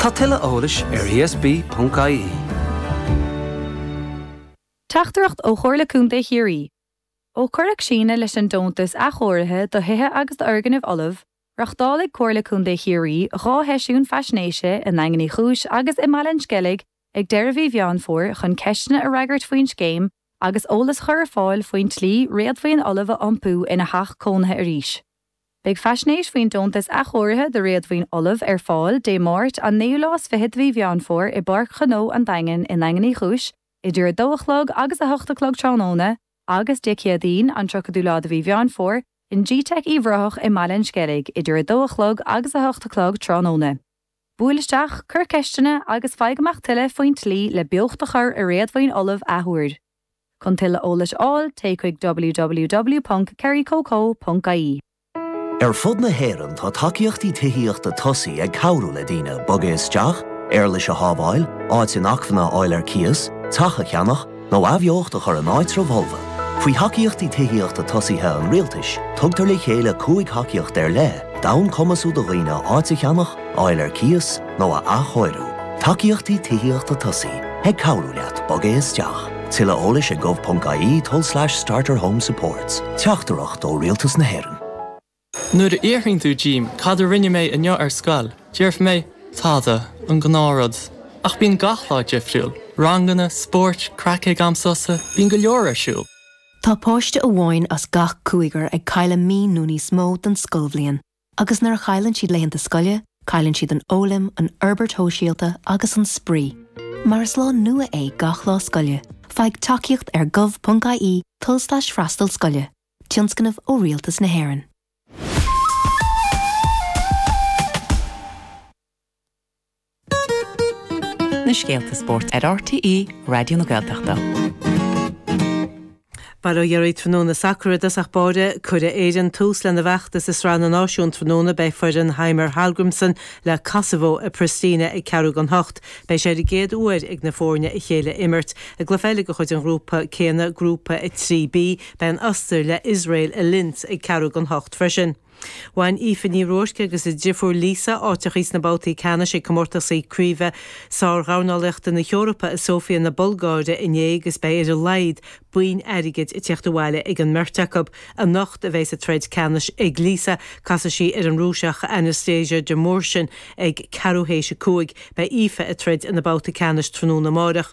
Tá tuilleadh eolais ar ESB.ie. Teachtaireacht ó Chomhairle Contae Chiarraí Ó cuireadh síneadh leis an deontas athchóirithe do thithe agus d'fhoirgnimh fholamh, reáchtálaigh Comhairle Contae Chiarraí dhá sheisiún faisnéise i nDaingean Uí Chúis agus i mBaile an Sceilg ag deireadh mhí Mheán Fómhair chun ceisteanna a fhreagairt faoin scéim agus eolas a chur ar fáil faoin tslí réadmhaoin fholamh a iompú ina theach cónaithe arís. Beidh faisnéis faoin deontas athchóirithe do réadmhaoin fholamh ar fáil Dé Máirt, an naoú lá is fiche de mhí Mheán Fómhair i bPáirc Ghnó an Daingin i nDaingean Uí Chúis idir a dó a chlog agus a hocht a chlog tráthnóna agus Dé Céadaoin, an tríochadú lá de mhí Mheán Fómhair in gteic Uíbh Ráthach i mBaile an Sceilg idir a dó a chlog agus a hocht a chlog tráthnóna. Buail isteach, cuir ceisteanna agus faigh amach tuilleadh faoin tslí le beocht a chur i réadmhaoin fholamh athuair. Chun tuilleadh eolais a fháil, téigh chuig www.kerrycoco.ie. Ar fud na hÉireann tá Tacaíochtaí Tithíochta Tosaigh ag cabhrú le daoine bogadh isteach, éarlais a shábháil, áit inacmhainne a fháil ar cíos, teach a cheannach, nó athbheocht a chur in áitreabha folmha. Faoi Thacaíochtaí Tithíochta Tosaigh an Rialtais, tugtar le chéile cúig thacaíocht ar leith d'fhonn cur ar chumas do dhaoine áit a cheannach, a fháil ar cíos nó a athchóiriú. Tacaíochtaí Tithíochta Tosaigh ag cabhrú leat bogadh isteach. Tuilleadh eolais ag gov.ie tulslais starterhomesupports. Teachtaireacht ó Rialtas na hÉireann. Nuair a fhiafraíonn tú díom cad a rinne mé inniu ar scoil, déarfaidh mé, tada, an gnáthrud. Ach bíonn gach lá difriúil, ranganna, spórt, craic ag am sosa, bíonn go leor ar siúl. Tá páiste amháin as gach cúigear ag cailleadh mí nó níos mó den scoilbhliain. Agus nuair a chailleann siad laethanta scoile, cailleann siad an fhoghlaim, an fhorbairt shóisialta agus an spraoi. Mar is lá nua é gach lá scoile, faigh tacaíocht ar gov.ie tulslais freastal scoile, tionscnamh ó Rialtas na hÉireann. na scéalta spóirt ar RTÉ Raidió na Gaeltachta. Bail ó Dhia oraibh tráthnóna, sacar i dtosach báire, cuirfidh Éirinn tús lena bhfeachtas i Sraith na Náisiún tráthnóna. Beidh foireann Heimir Hallgrímsson le Kosovo i Pristina ag ceathrú don hocht. Beidh sé ar an gcéad uair ag na foirne a chéile a imirt i gcluiche eile de chuid an ghrúpa céanna, Grúpa 3B. Beidh an Ostair le Iosrael i Linz ag ceathrú don hocht freisin. Bhain Aoife Ní Ruairc agus a driofúr Lisa áit amach sna babhtaí ceannais ag comórtasaí craoibhe sár-dhornálaíochta na hEorpa i Sóifia na Bulgáire inné agus beidh ar a laghad boinn airgid ag tíocht abhaile ag an mbeirt acu. Anocht a bheas an troid ceannais ag Lisa, casfaidh sí ar an Rúiseach Anastasia Demurchian ag ceathrú théis a cúig. Beidh Aoife ag troid ina babhta ceannais tráthnóna amárach.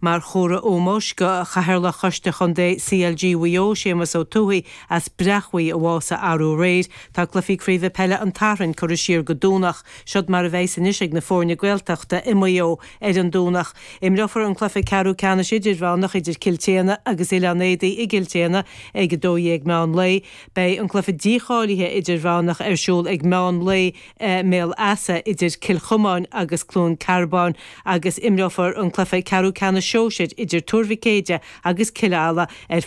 Mar chomhartha ómóis do Chathaoirleach Choiste Chontae CLG Mhaigh Eo, Séamus Ó Tuathaigh as Bréachmhaigh a bhásaigh arú aréir, tá cluichí craoibhe peile an tSathairn curtha siar go Domhnach. Siod mar a bheidh's anois ag na foirne Gaeltachta i Maigh Eo ar an Domhnach. Imreofar an cluiche ceathrú ceannais idirmheánach idir Cill tSéadhna agus Oileán Éadaí i gCill tSéadhna ag 12 meán lae. Beidh an cluiche dícháilithe idirmheánach ar siúl ag meán lae i mBéal Easa idir Cill Chomáin agus Cluain Cearbán agus imreofar an cluiche ceathrú ceannais sóisir idir Tuar Mhic Éadaigh agus Cill Ala ar